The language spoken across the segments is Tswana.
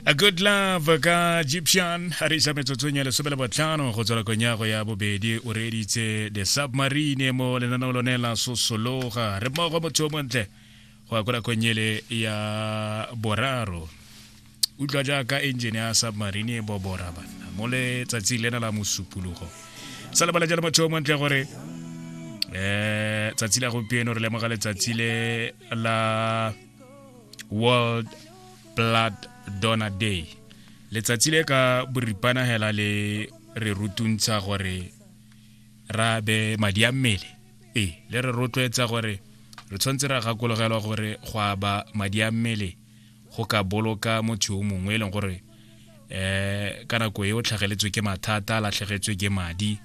a good love ka egyptian a re isa metsotsong ya lesome le botlhano go tswela konyago ya bobedi o reeditse the submarine mo lenaneo lone la sosologa re mmogo motho o montle go ya ko nakong ele ya boraro utlwa jaaka engine ya submarine e bobora banna mo letsatsing lena la mosupologo sa lebala jalo motho o montle gore um tsatsi la gompieno re lemoga letsatsi le la world blood donor day letsatsi le ka boripana hela le re rutuntsha gore ra be madi a mmele e le re rotloetsa gore re tshwanetse ra gakologelwa gore go aba madi a mmele go ka boloka motho yo mongwe e leng gore eh ka nako e o tlhageletswe ke mathata a latlhegetswe ke madi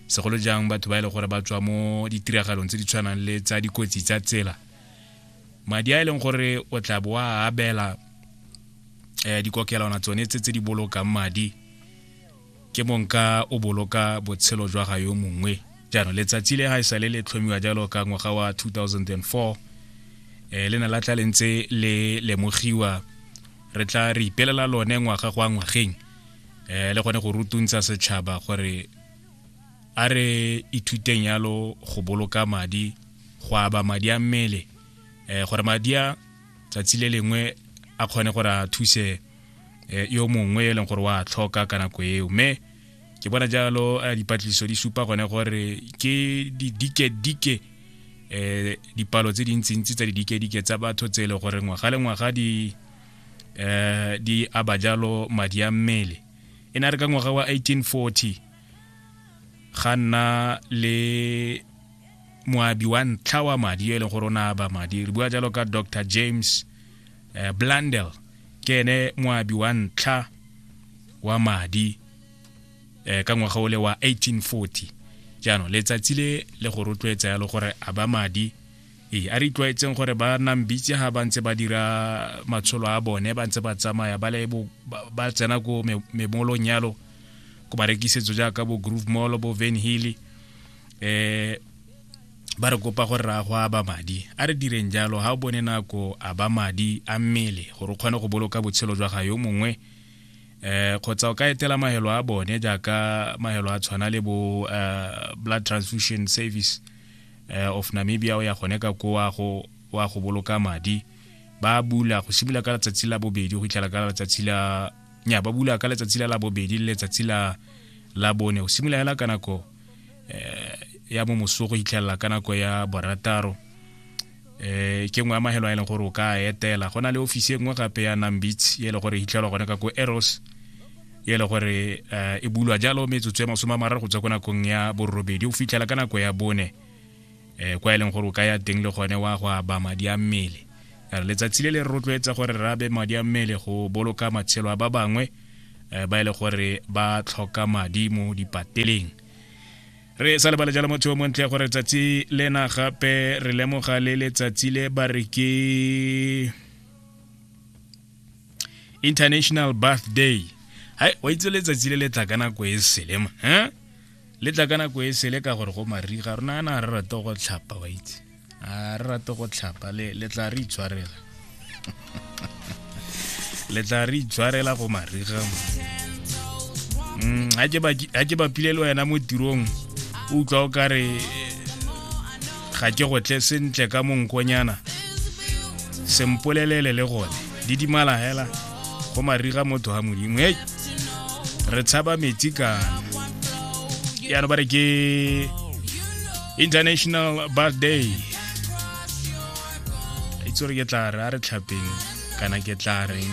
segolo jang batho ba e leng gore ba tswa mo ditiragalong tse di tshwanang le tsa dikotsi tsa tsela madi a e leng gore o tla bo a abela um dikokelwana tsone tse tse di bolokang madi ke monka o boloka botshelo jwa ga yo mongwe jaanong letsatsi le ga e sale le tlhomiwa jalo ka ngwaga wa 2004 um le ne la tla le ntse le lemogiwa re tla re ipelela lone ngwaga go a ngwageng um le gone go rutuntsa setšhaba gore a re ithuteng yalo go boloka madi go aba madi a mmele um gore madi a tsatsi le lengwe a kgone gore a thuse eh, yo mongwe e leng gore wa tlhoka ka nako eo mme ke bona jalo eh, dipatlisiso di supa gone gore ke didike-dike um dipalo tse dintsintsi tsa didike-dike tsa batho tse e le gore ngwaga le ngwaga di um di aba jalo madi a mmele e ne re ka ngwaga wa 1840 ga nna le moabi wa ntlha wa madi yo e leng gore o ne a ba madi re bua jalo ka dr james eh, blandel ke ene moabi wa ntlha wa madi eh, ka ngwaga o le wa 1840 jaanong letsatsi le le go rotloetsa yalo gore a ba madi ee a re itlwaetseng gore ba nang bitse ga ba ntse ba dira matsholo a bone ba ntse ba tsamaya ba le ba tsena ko memolong yalo ko barekisetso jaaka bo groove mall bo van hilly eh ba re kopa gore ra go aba madi a re direng jalo ga o bone nako a ba madi a mmele gore o kgone go boloka botshelo jwa ga yo mongwe eh kgotsa o ka etela mahelo a bone jaaka mahelo a tshwana le bo eh, blood transfusion service eh, of namibia o ya gone ka ko wa go wa go boloka madi ba bula go simolola ka letsatsi la bobedi go fitlhela ka letsatsi la nya ba bula ka letsatsi la labobedi le letsatsi la la bone o simolola hela ka nako eh, ya mo moso go itlhelela ka nako ya borataro eh ke nngwe ya mahelo a e leng gore o ka etela go na le ofisi e nngwe gape ya nambits e le gore e itlhelwa gone ka ko eros e le gore eh, e bulwa jalo metsotso ya masome a mararo go tswa ko nakong ya borobedi o fitlhela ka nako ya bone um kwa e leng gore o ka ya teng le gone wa go aba madi a mmele re letsatsi le le rotloetsa gore re abe madi a mmele go boloka matshelo a ba bangwe um ba e le gore ba tlhoka madi mo dipateleng re sa lebale jalo motho o montle gore letsatsi lena gape re lemoga le letsatsi le ba re ke international birthday hai wa itse letsatsi le le tla ka nako e selema um le tla ka nako e sele ka gore go mariga rona yana ga re rate go tlhapa wa itse a re rate go tlhapa le tla re itshwarela le tla re itshwarela go mariga mm, a ke bapile le wena mo tirong o utlwa o kare ga ke go tle sentle ka monkonyana sempolelele le gone didimala hela go mariga motho ga modimo e re tshaba metsi kana yana ba re ke international bath day itse gore ke tla re a re tlhapeng kana ke tla reng